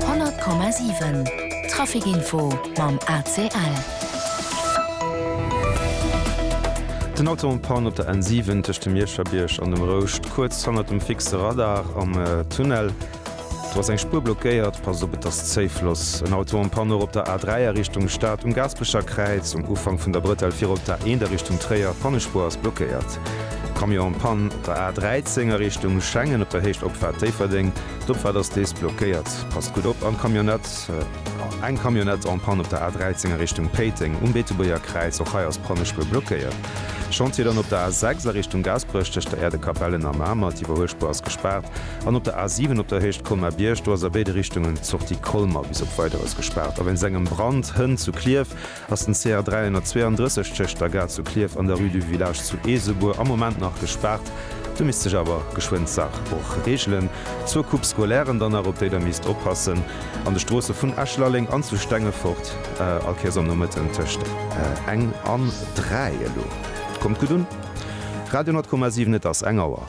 100,7 Trafic-Info mam ACL. Den Auto en Panne op der N7 tëscht dem Mierscherbierg an dem Rouscht, kuerz hannert dem fixe Radar am Tunnel. Do ass eng Spuer blockéiert, passt op, et ass Zéifloss. En Auto en Panne och op der A3 a Richtung Stad, um Gaasperecher Kräiz, um Ufank vun der Brëtell virop. D'A1 a Richtung Tréier, d'Pannespuer ass blockéiert. Camion en panne op der A13 a Richtung Schengen op der Héicht Opfahrt Déifferdeng. D'Opfahrt ass deels blockéiert. Passt gutt op an Camionnette. Eng Camionnette en panne op der A13 a Richtung Péiteng um Beetebuerger Kräiz. Och hei ass d'Pannespuer blockéiert. Chantier dann op der A6 a Richtung Gaasperech tëscht der Äerdekapell en a Mamer. D'Iwwerhuelspuer ass gespaart. An op der A7 op der Héicht Colmar-Bierg. Do ass a béide Richtungen d'Sortie Colmar bis op Weideres gespaart a wéinst engem Brand hënt zu Klierf. Ass den CR 332 tëscht der Gare zu Klierf an der Rue du Village zu Eesebuer am Moment nach gespaart, do misst sech awer geschwënn d'Saach och reegelen. Zwou Coupes scolaires dann nach, op déi der misst oppassen, an de Stroosse vun Esch-Lalleng an zu Stengefort, all Kéiers am Nomëtten tëscht eng an dräi. Elo kommt gutt un Radio 100,7, et ass eng Auer.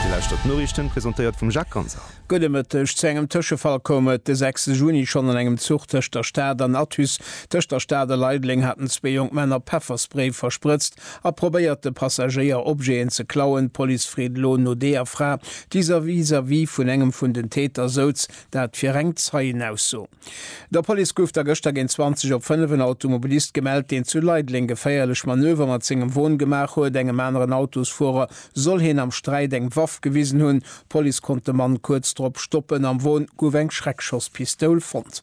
Dir lauschtert d'Noriichten, presentéiert vum Jacques Ganser. Gutt e Mëtteg, Zu engem Tëschefall koum et de 6 Juni schonn an engem Zuch tëscht der Stad an Athus. Tëscht der Stad a Leideleng haten zwee jonk Männer Pefferspray versprëtzt a probéiert, de Passagéier Objeten ze klauen. D'Police freet elo no deeër Fra, déi vis-à-vis vun engem vun den Täter souz. Dat fir eng Zeienausso. Der Police gouf da gëschter géint 20 op 5 en Automobilist gemellt, deen zu Leideleng geféierlech Manöver mat sengem Won gemaach huet. Engem aneren Autosfuerer soll hien am Sträit eng Waff gewisen hunn. D'Police konnt de Mann kuerz drop stoppen. Am Won gouf eng Schreckschosspistoul fonnt.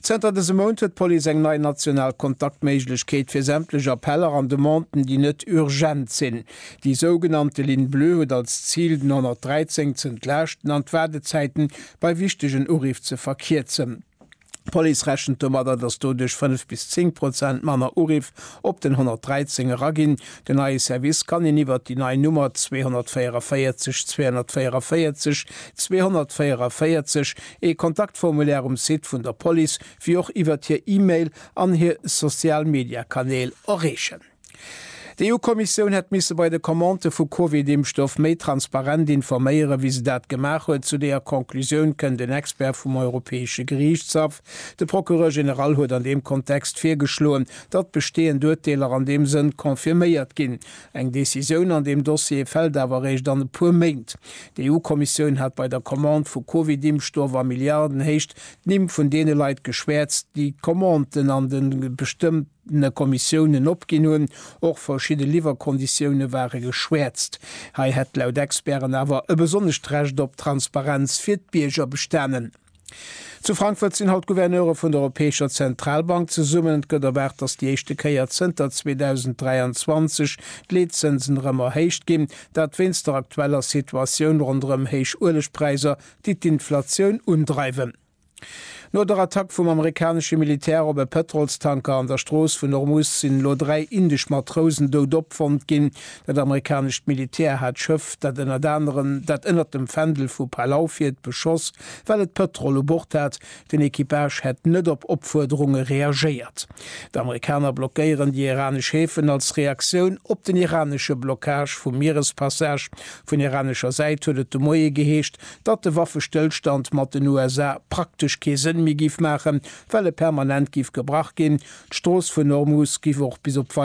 Zënter dësem Mount huet d'Police eng nei national Kontaktméiglechkeet fir sämtlech Appeller an Demanden, déi net urgent sinn. Déi sougenannte Ligne bleue huet als Zil, den 113 ze entlaaschten an d'Waardezäiten bei wichtegen Uriff ze verkierzen. D'Police rechent domadder, dass doduerch 5 bis 10 Prozent manner Uriff op den 113 eraginn. Den neie Service kann een iwwert déi nei Nummer 244 244 244, ee Kontaktformulaire um Site vun der Police, wéi och iwwert hir E-Mail an hir Social-Media-Kanäl erreechen. D'EU-Kommissioun hätt misse bei de Commandë vu Covid-Impfstoff méi transparent informéieren, wéi se dat gemaach huet. Zu deeër Conclusioun kënnt en Expert vum Europäesche Geriichtshaff. De Procureur général huet an deem Kontext virgeschloen, datt besteeënd Urteeler an deem Sënn confirméiert ginn. Eng Decisioun an deem Dossier fält awer eréischt an e puer Méint. D'EU-Kommissioun hat bei der Commande vu Covid-Impfstoff a Milliardenhéicht d'Nimm vun deene Leit geschwäerzt, déi d'Commanden an de bestëmmte. verschiddene Kommissiounen opginn hunn. Och verschidde Liwwerkonditioune ware geschwäerzt. Hei hätt laut Experten awer e besonnescht Recht op Transparenz fir d'Bierger bestanen. Zu Frankfurt sinn haut d'Gouverneure vun der Europäescher Zentralbank zesummen. Et gëtt erwaart, datt déi éischte Kéier zënter 2023 d'Leetzënsen erëm erhéicht ginn. Dat wéinst der aktueller Situatioun ronderëm héich Uelegpräisser, déi d'Inflatioun undreiwen. No der Attack vum amerikanesche Militär op e Pëtrolstanker an der Strooss vun Ormus sinn elo dräi indesch Matrousen dout opfonnt ginn. Dat amerikanescht Militär hat d'Schëff, dat ënnert anerem dat ënnert dem Fändel vu Palau fiert, beschoss, well et Pëtrol u Bord hat. Den Equipage hätt net op Opfuerderunge reagéiert. D'Amerikaner blockéieren déi iranesch Häfen als Reaktioun op den iranesche Blockage vum Mierespassage. Vun iranescher Säit huet et de Moie geheescht, datt de Waffestëllstand mat den USA praktesch kee Sënn méi giff maachen, well e permanent giff gebrach ginn, d'Strooss vun Hormuz giff och bis op